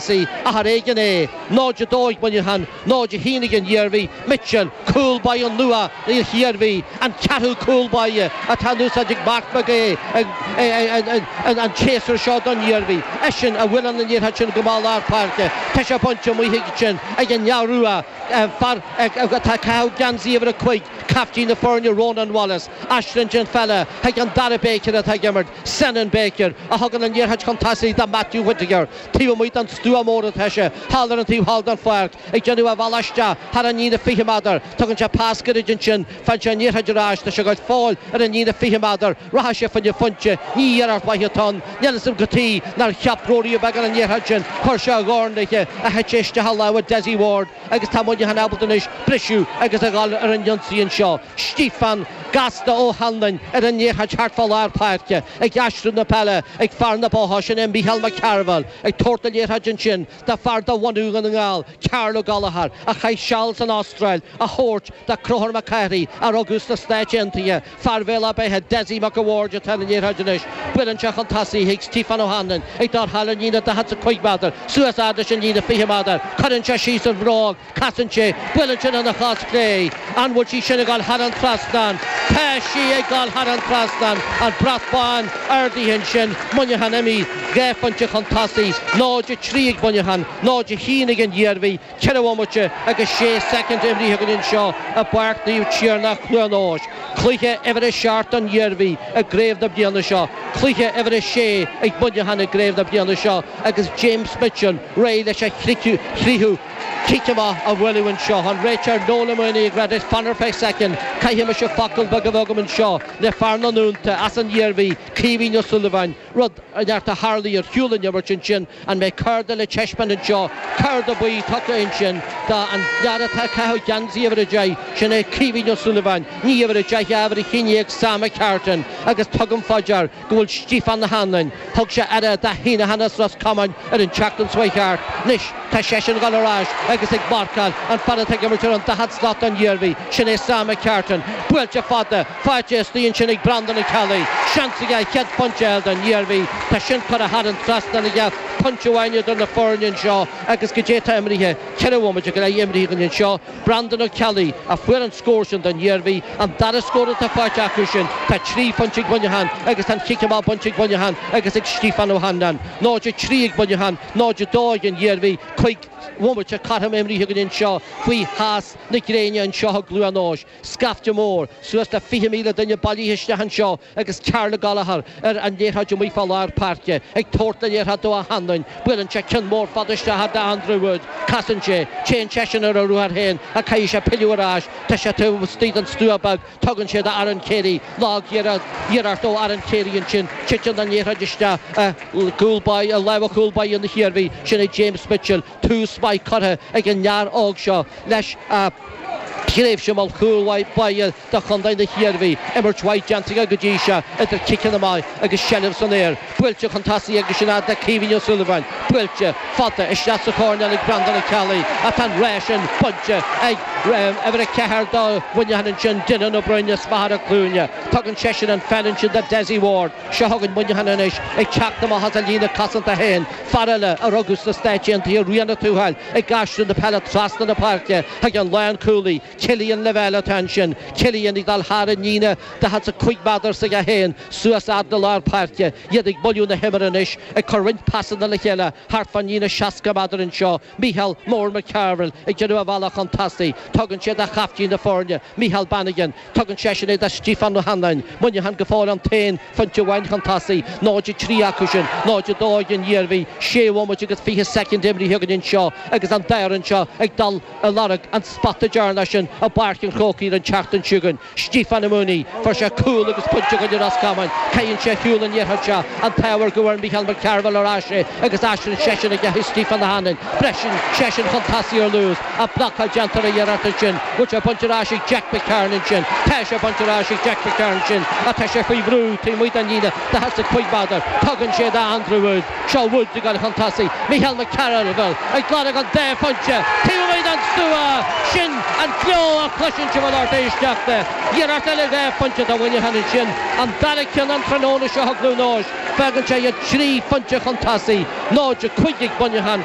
sí, ach ar éigean é. 0 a 2 ag Muineachán, 0 a haon ag an Iarmhí, Mitchell, cúl báire nua na hIarmhí, an ceathrú cúl báire atá in úsáid ag Mark Mac Aodha an séasúr seo don Iarmhí. Eisean a bhuaileann an liathróid sin amach lár páirce. Tá sé bainte amuigh chuige sin ag an leaid rua, fear atá ag caitheamh geansaí uimhir a cúig, caiftín na foirne Ronan Wallace. Aistríonn sé an pheil chuig an dara Baker atá ag imirt. Senan Baker a thugann an liathróid chun tosaigh do Matthew Whittaker taobh amuigh den stua mór atá sé, thall ar an taobh thall den pháirc, ag déanamh a bhealaigh isteach thar an líne 20 meadar. Tugann sé pas gairid ansin, faigheann sé an liathróid ar ais, tá sé go fóill ar an líne 20 meadar, rachaidh sé fá choinne pointe, ní iarracht mhaith atá ann, níl a fhios agam cad tuige nár cheap Rory Beggan an liathróid sin, chuir sé a dhorn léithe, thit sí isteach i lámha Dessie Ward. Agus tá Muineachán ábalta anois briseadh agus a dhul ar an ionsaí anseo. Stiofán gasta Ó hAnluain ar an liathróid thart fá lár páirce, ag aistriú na peile ag fear na Botha, sin é Micheál Mac Cearbhaill, ag tabhairt na liathróide ansin do fear de bhunú Dhún na nGall, Karl Ó Gallchóir, a chaith seal san Astráil, á tabhairt do Conchúr Mac Cárthaigh, a rugadh sna Stáit Aontaithe, Fear Bhéal a' Beithe, Dessie Mac a' Bhaird, atá ar an liathróid anois. Buaileann sé chun tosaigh chuig Stiofán Ó hAnluain ag dul thar an líne 45 meadar, suas fhad leis an líne 20 meadar. Cuireann sé síos an bhróg, casann sé, buaileann sé lena chos chlé. An bhfuil sí sin ag dul thar an trasnán? Tá sí ag dul thar an trasnán! An brat bán ardaithe ansin, Muineachán imithe dhá phointe chun tosaigh, 0-3 ag Muineachán, 0-1 ag an Iarmhí. 4 bhomaite agus 6 soicind imrithe againn anseo i bPáirc Naomh Tiarnach, Cluain Eois. Cluiche uimhir 7 don Iarmhí i gcraobh na bliana seo, cluiche uimhir 6 ag Muineachán i gcraobh na bliana seo agus James Mitchell réidh leis a thríú cic amach a bhualadh anseo tá an réiteoir Noel Mooney ag rá leis fan ar feadh soicind. Caithfidh mise focal beag a bheith agam anseo le fear na nDúnta as an Iarmhí, Caoimhín Ó Súilleabháin. Rud inteacht a tharlaigh ar shiúl ón imirt ansin, an mbeidh cárta le teispeáint anseo? Cárta buí tugtha ansin don fhear atá ag caitheamh geansaí uimhir a deich, sin é Caoimhín Ó Súilleabháin. Ní uimhir a deich ach uimhir a haon déag, Sam McCartan agus tugaim fá dear go bhfuil Stíofán Ó hAnluain, thug sé aire do Heneghan as Ros Comáin ar an tseachtain seo chuaigh thart, anois tá seisean ag dul ar ais agus ag marcáil an fear atá ag imirt ar an daichead slat don Iarmhí, sin é Sam McCartan. Buailte fada! Faighte istigh ansin ag Breandán Ó Ceallaigh. Seans aige a chéad phointe a fháil don Iarmhí. Tá sin curtha thar an trasnán aige, pointe amháin idir na foirne anseo agus, cad é atá imrithe. Ceithre bhomaite go leith imrithe againn anseo. Breandán Ó Ceallaigh a fuair an scór sin don Iarmhí, an dara scór atá faighte acu sin. Tá trí phointe ag Muineachán agus tá an cic amach bainte ag Muineachán agus ag Stiofán Ó hAnluain. 0-3 ag Muineachán, 0-2 ag an Iarmhí. Cúig bhomaite, cothrom, imrithe againn anseo faoi theas na gréine anseo i gCluain Eois. Scaifte mór, suas le 20,000 duine bailithe isteach anseo agus Karl Gallagher ar an liathróid amuigh fá lár páirce, ag tabhairt na liathróid do Ó hAnluain, buaileann sé ceann mór fada isteach do Andrew Woods, casann sé, téann seisean ar a ruathar féin ach caithfidh sé pilleadh ar ais, tá sé taobh istigh den stua beag, tugann sé do Aaron Carey, lagiarracht ó Aaron Carey ansin, titeann an liathróid isteach i gcúl báire, i lámha chúl báire na hIarmhí, sin é James Mitchell. tús maith curtha ag an fhear óg seo leis a thréimhse mar chúl báire do chontae na hIarmhí, imirt mhaith déanta aige go dtí seo idir ciceanna amach agus seilbh san aer, buailte chun tosaigh aigesean fhad le Caoimhín Ó Súilleabháin, buailte fada isteach sa choirnéal ag Breandán Ó Ceallaigh ach tá an rás sin bainte ag uimhir a ceathair do Mhuineachán ansin, Dylan Ó Broin as Machaire Cluanaí. Tugann seisean an pheil ansin do Dessie Ward. Seo chugainn Muineachán anois, ag teacht amach as a líne cosanta féin. Fear eile, a rugadh sna Stáit Aontaithe, Rían Ó Tuathail, ag aistriú na peile trasna na páirce chuig an lánchúlaí, Killian Lavelle, atá ansin. Killian ag dul thar an líne, 45 méadar s'aige féin suas fhad le lár páirce. Iad ag moilliú na himeartha anois, ag cur roinnt pasanna le chéile thart fán líne 60 méadar anseo. Micheál Mór McCarville ag déanamh a bhealach chun tosaigh. Tugann sé do chaiftín na foirne, Micheál Bannigan. Tugann seisean í do Stiofán Ó hAnluain. Muineachán go fóill an t-aon phointe amháin chun tosaigh, 0:03 acu sin, 0:02 ag an Iarmhí, sé bhomaite agus 20 soicind imrithe againn anseo agus an dá fhoireann seo ag dul i lorg an spota deireanach sin i bPáirc an Chrócaigh an tseachtain seo chugainn. Stiofán Ó Maonaigh, fuair sé cúl agus pointe i gcoinne Ros Comáin, caitheann sé ar shiúl an iarraidh seo, an t-ádh air go bhfuair Micheál Mac Cearbhaill ar ais é agus aistríonn seisean í chuig Stiofán Ó hAnluain, briseann seisean chun tosaigh ar luas. ach blocáil déanta ar an iarracht sin bhfuil sé bainte ar ais ag Jack McCarron ansin tá sé bainte ar ais ag Jack McCarron ansin ach tá sé faoi bhrú taobh amuigh den líne 45 méadar tugann sé do Andrew Woods seo Woods ag gabháil chun tosaigh Micheál McCarville ag gabháil don dá phointe taobh amuigh den stua sin an gleo a chloiseann sibh a lucht éisteachta iarracht eile dhá phointe do Mhuineachán ansin an dara ceann an tráthnóna seo thug Rúnóis fágann sé iad trí phointe chun tosaigh 0-5 ag Muineachán